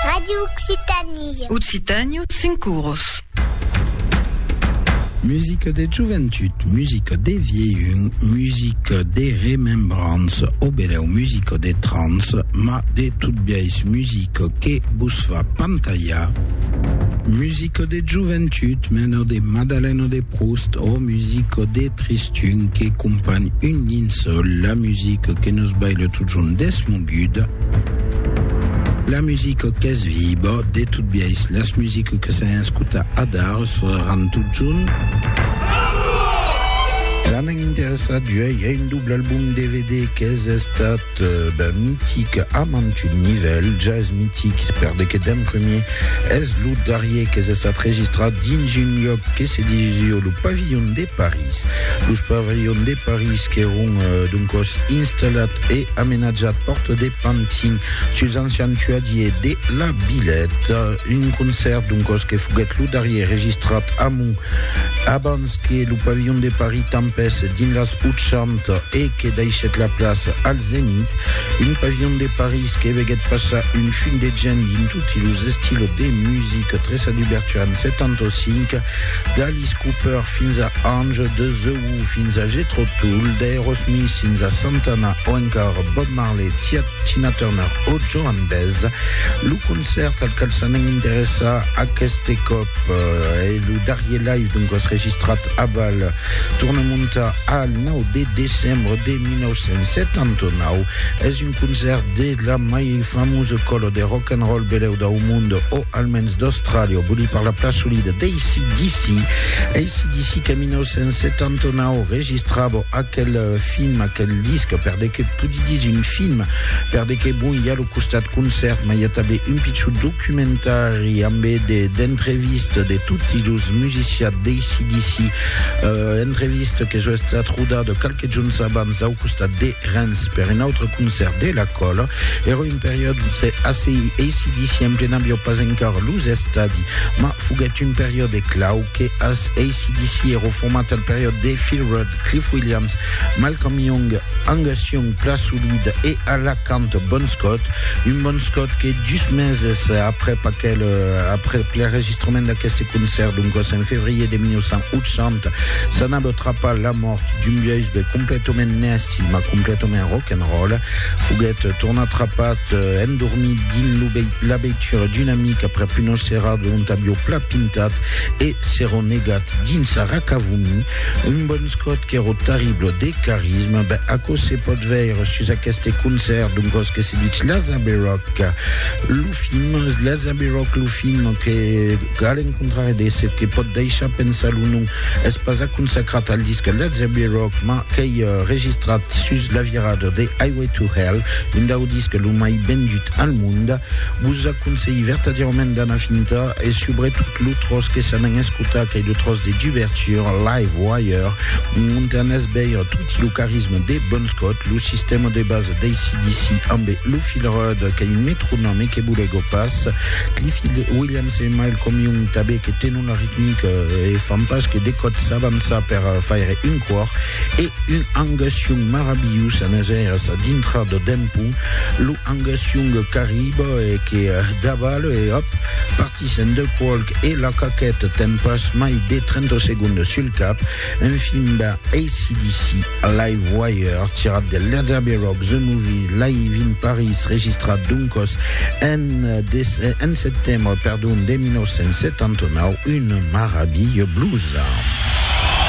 Radio Occitanie. Occitània, cinc oros. Musica de joventut, musica de vieilhun, musica de remembrança, o beneu musica de trans, ma de tot biais musica que vos fa pantalhar, musica Musico de joventut, mena de Madaleno de Proust o musico de Tristun que companh un nin sol, la musico que nos baile totjorn desmoguda, la musico qu'es viba, de tot biais las musico que s'an escuta adar sonaran totjorn. S'an interessat uèi a un doble album dvd qu'es estat. ben mitic a mantun nivèl, jazz mitic per de que d'en premier es lo darrier qu'es estat registrat dins un luòc que se disió lo Pavillon de París. Los Pavillons de París qu'èron doncòs installat e amenatjat Porte de Pantin suls ancians tuadiers de la Villette. Un concèrt doncòs que foguèt lo darrier registrat amont abans que lo pavilhon de Paris tanpes dins las 80 e que daishèt la plaça al Zenith, un pavilhon de Paris que veguèt passar un fum de gent dins toti los estilos de musica, Tressa d'ubertura en 75, d'Alice Cooper fins a Ange, de The Who fins a Jethro Tull, d'Aerosmith fins a Santana o encara Bob Marley, Tina Turner o Joan Baez. Lo concèrt al qual s'anèm interessar aqueste còp, E lo darrier live doncas registrat a Val Tournemonta al 9 de decembre de 1979 es un concèrt de la mai famosa còla de rock and roll belèu dau monde o almens d'Austràlia, vòli parlar plan solida d'ACDC. ACDC qu'en 1979 registrava aquel film, aquel disc, per de qué pòdi dire un film, per de qué bon i a lo Costat concèrt mai a tanben un pichut documentari ambe de d'entrevistes de toti los musiciats d'ACDC, entrevista que soi estat rodada qualques jorns abans au costat de Rens per un autre concèrt de la Còla. Èra un periòd ute ACDC en plen aviá pas encara los estadi, ma foguèt un periòde clau que as ACDC èra format al periòde de Phil Rudd, Cliff Williams, Malcolm Young, Angus Young, plan solid, e a la Cant Bon Scott, un Bon Scott que just meses aprèp aquel, aprèp l'enregistrament d'aqueste concèrt, doncas en fevrier de 1980, s'anava trapar la mòrt d'un biaisbe completament nèci mas completament rock'n'roll, foguèt tornat trapat endormit dins lo la veitura d'un amic aprèp una serada ont avió plat pintat e s'èron negat dins sa racavomir un Bon Scott qu'èro terrible de carisme, ben aquò se pòt veire sus aqueste concèrt d'un còs que se ditz La Zabe Rock, lo film, La Zabe Rock, lo film, que a l'encontrare de se que pòt deishar pensar lo nom, es pas a consacrat al disc La Zabe Rock, ma qu'ei registrat sus la virada de Highway to Hell, un dau disc lo mai vendut al monde. Vos aconselhi vertadièrament d'anar fintar e subretot lo tròç que s'an en escola. Escuta qu'ei lo tròç de Duverture, Live Wire, ont anètz veire tot lo carisma de Bon Scott, lo sistèma de basa d'ACDC amb lo fil ròd qu'ei un metronòme que bolego pas, Cliffy Williams e Mile Commune tanben que tenon la ritmica e fan pas que de còps s'avançar per faire un còr e un Angus Young marabilhós anètz veire sa dintra de dempun lo Angus Young qu'arriba e que davale e òp, Tisen de qualc e la caquèt ten pas mai de 30 segondes sul cap, un film ben ACDC, Livewire, tirat de Led Abbey Rock The Movie, live in Paris, registrat doncas en setembre de 1979, una maravilha blusa.